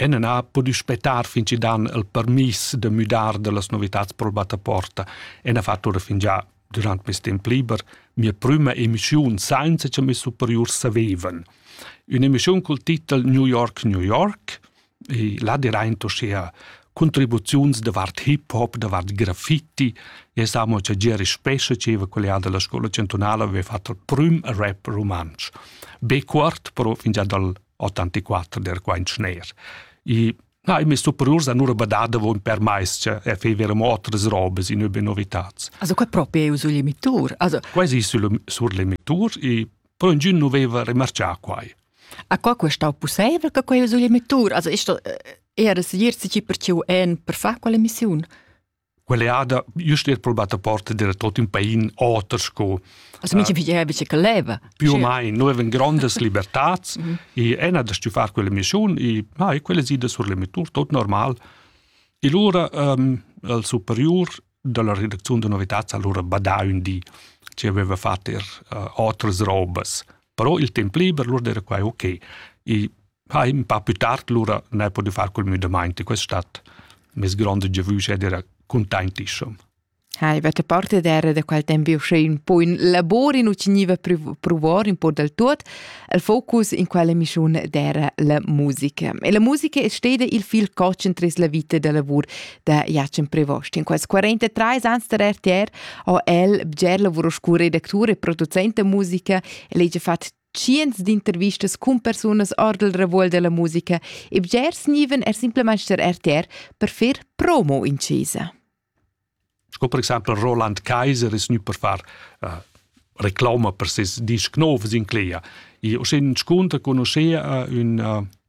Ena n'ha pudü spettar fin chi dan il permiss da müdar da las novitats pro'l battaporta e n'ha fat oura fingià durant meis temp liber mia prüma emischiun sainza cha meis superiurs savevan. Ün'emischiun cul titel New York, New York e là diraint uschea contribuziuns davart hip hop, davart graffiti e s'amo cha Geri Spescha dscheva quella da la scoula chantunala aveva fat il prüm rap rumantsch. Be cuort però fingià dal 84 der quaint schner. I na, i mis superiurs an ura badada von per mais che er fever mo otras robes in übe novitats. Also qua proprio è sul limitur. Also quasi sul sur limitur e però in nu veva remarcià quai. A qua questa possibile che quai sul limitur? Also ist das eher das Jirzi per ciu en per far quella missione? quell'eada just er probat a porta d'era tot ün pain oter sco Also mincha pigliava bice che leva. Più o mai, noi avevan grandes libertats mhm. e ena da stufar quella mission e ah, e quella sida sur l'emittur, tot normal. E lura um, il superior della redaczione de novitats allora badà un di ci aveva fatto er uh, otras robas. però il temp liber lur era quai ok. I ha in pa più tard lura ne podiu far col müdamaint e quest stat mes grande giavüsch ed era containtissum. Ha, avete parte d'era da quel tempo uscì un po' in lavoro, non teniva provare un po' del tutto, il focus in quella missione d'era la musica. E la musica è stata il fil cocen tras la vita da lavoro. da Jacin Prevost. In quels 43 ans der RTR ho el bger lavuro scu redactur e producent da musica, el hegia fat tschients d'intervistas cun persunas ordel revuol della musica e bger sniven er simplemente der RTR per fer promo in chesa. Sco per exempel Roland Kaiser es nu per far uh, reclama per ses disc novs in Clea. E o scin scunta conoscea uh, un uh,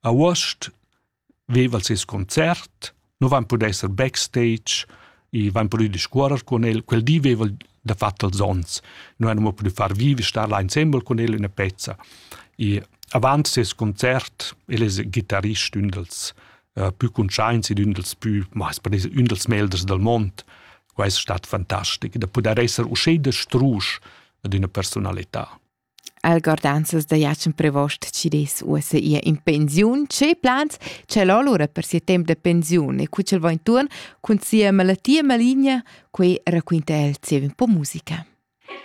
A uost veva'l seis concert, nu vain pudü esser backstage, i vain pudü discuorrer cun el. Quel di veva'l dafatt els ons. Nu hain amo pudü far vivi, star là insembel cun el üna pezza. I avant seis concert el es ghitarist, ün dals uh, pü cuntschaints ed ün dals pü, ma es per dir ün dals melders dal mond. Quai es stat fantastic, da pudair esser uschè da strusch ad üna persunalità. Algordanzas da Jatschen Prevost chi dess uossa ir in pensiun. Che plans c'el ho lura per sia temp da pensiun e cu ch'el va intuorn cun sia malattia maligna, quei raquinta el zieva un po musica.